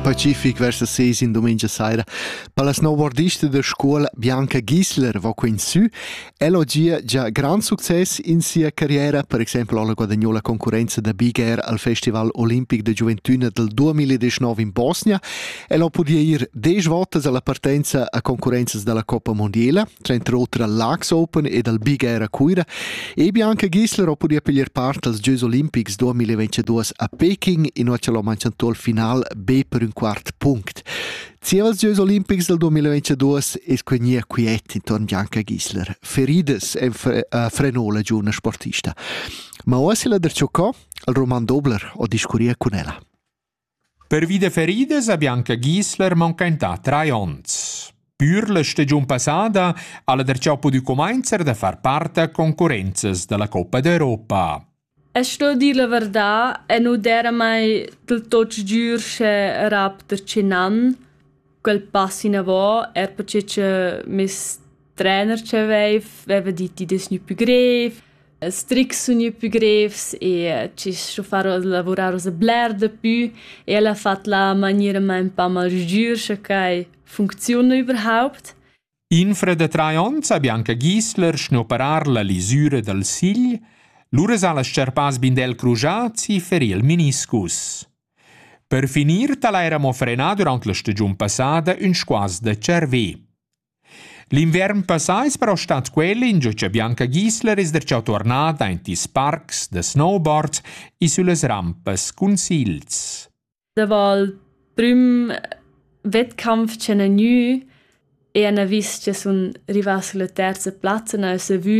Pacific versa ses in domenica saira. Per la snowboardista da scola Bianca Gisler va quin sü. Ella gia già grand success in sia carriera, per exempel alla guadagnò la concorrenza da Big Air al Festival Olimpic de Gioventüna del 2019 in Bosnia El ha pudì ir desch votas alla partenza a concurrenzas dalla Coppa Mondiela, tranter oter al Laax Open ed al Big Air a Cuira, e Bianca Gisler ha pudì piglier part als Gieus olimpics 2022 a Peking, inua che l'ha manchentò il final be per un quart punct. Zieva als Gieus olimpics del 2022 es quegnia quiet intorn Bianca Gisler. Feridas en frenò la giovane sportista. Ma oasi la der Ciocò, il Roman Dobler ho discurria cun ella. Pervi da feridas ha Bianca Gisler manchentà trais onns. Pür la stagiun passada ha la darcheu pudü cumainzer da far part a concurrenzas da la Coppa d'Europa. E sto dir la verdà, e nu d'era mai del tot giür sche rap da tschinnan. quel pass inavò, er perche cha meis trener cha veiv veva dit di dess gnü pü grev, As trics sun gnü pü grevs e chi s'ho far lavurar oza bler da pü e el ha fat la maniera ma ün pa malgiür, scha quai funcziuna überhaupt. Infra da trais onns ha Bianca Gisler schnoperar la lisura dal sigl, lura s'ha las scerpas Bindel crujazzi ferì il meniscus. Per finir tal ha era mo frenà durant la stagiun passada ün squaz da tscharvè. L'inviern passà es però stat quel ingio cha Bianca Gisler es darcheu tuornada aint ils parcs da snowboard e süllas rampas cun sigls. Davo il prüm wettkampf ch'han gnü e han vis cha sun rivà sulla terza plazza n'ha esa vü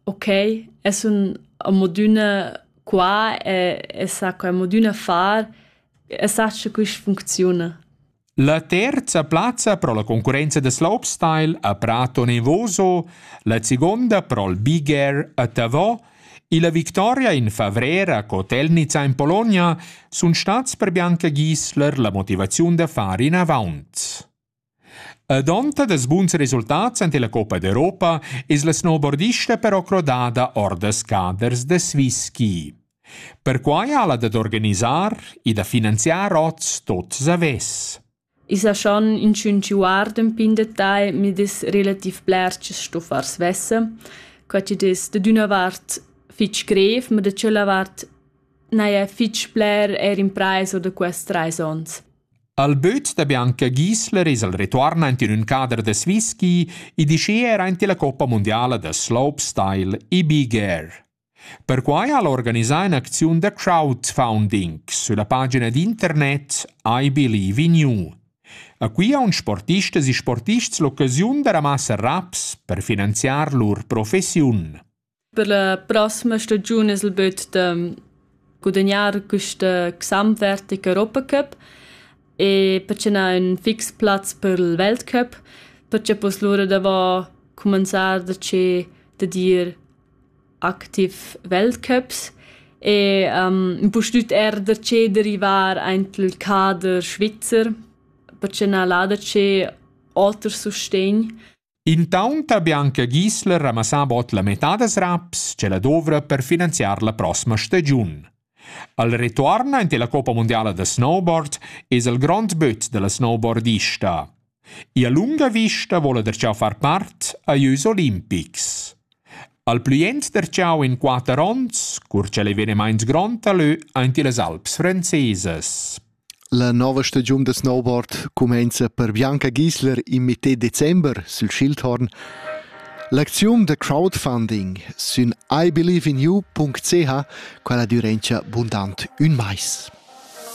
okay e sun amodüna qua e e sa co amodüna far e sach cha quist funcziuna. La terza plazza pro la concurrenza da slopestyle a Prato Nevoso, la segonda pro'l Big Air a Tavò e la victoria in favrer a Kotelnica in Bologna sun stats per Bianca Gisler la motivaziun da far inavaunt. Ad onta dels buns resultats ante la Coppa d'Europa es la snowboardista però crodada or da scaders da svi-ski. Perquai ha'la dad organisar e da finanziar hoz tuot savess. I sa schon inchün chi guarda ün pin detagl mi'd es relativ bler chi's sto far svessa. Quai chi'd es dad üna vart fich grev, ma da tschella vart n'haja fich bler eir imprais o da quist trais ons. Al böt da Bianca Giesler es el retuorn aint in ün cader da Swiss ski e dischea eir aint illa Coppa mundiala da slopestyle e big air. Perquai ha el organisà in'acziun da crowdfunding sülla pagina d'internet iBelieveInU. A Cuira han sportistas e sportists l'occasiun da ramassar raps per finanziar lur professiun. Per la prossima stagiun es il büt da gudagnar quista gesamtwertige Europacup e per ce n'ha ün fix plaz per il Weltcup, perche poss lura davo cumanzar da che da dir activ Weltcups e ehm impustüt eir da che derivar aint il cader svizzer perche na l'ha da che oter sustegn. Intaunt ha Bianca Gisler ramassà bod la metà das raps ch'ella douvra per finanziar la prossima stagiun. Al retuorn aint illa coppa mundiala da snowboard es el grond böt da la snowboardista. Ia lunga vista voula darcheu far part a lieus olimpics. Al plü jent darcheu in quatter ons, cur ch'el ei venimaint grond a lö aint illas Alps francesas. La nova stagiun da snowboard cumainza per Bianca Gisler in metter december sül Schildhorn. L'acziun da crowdfunding sün iBelieveInYou.ch quala dürenscha bundant ün mais.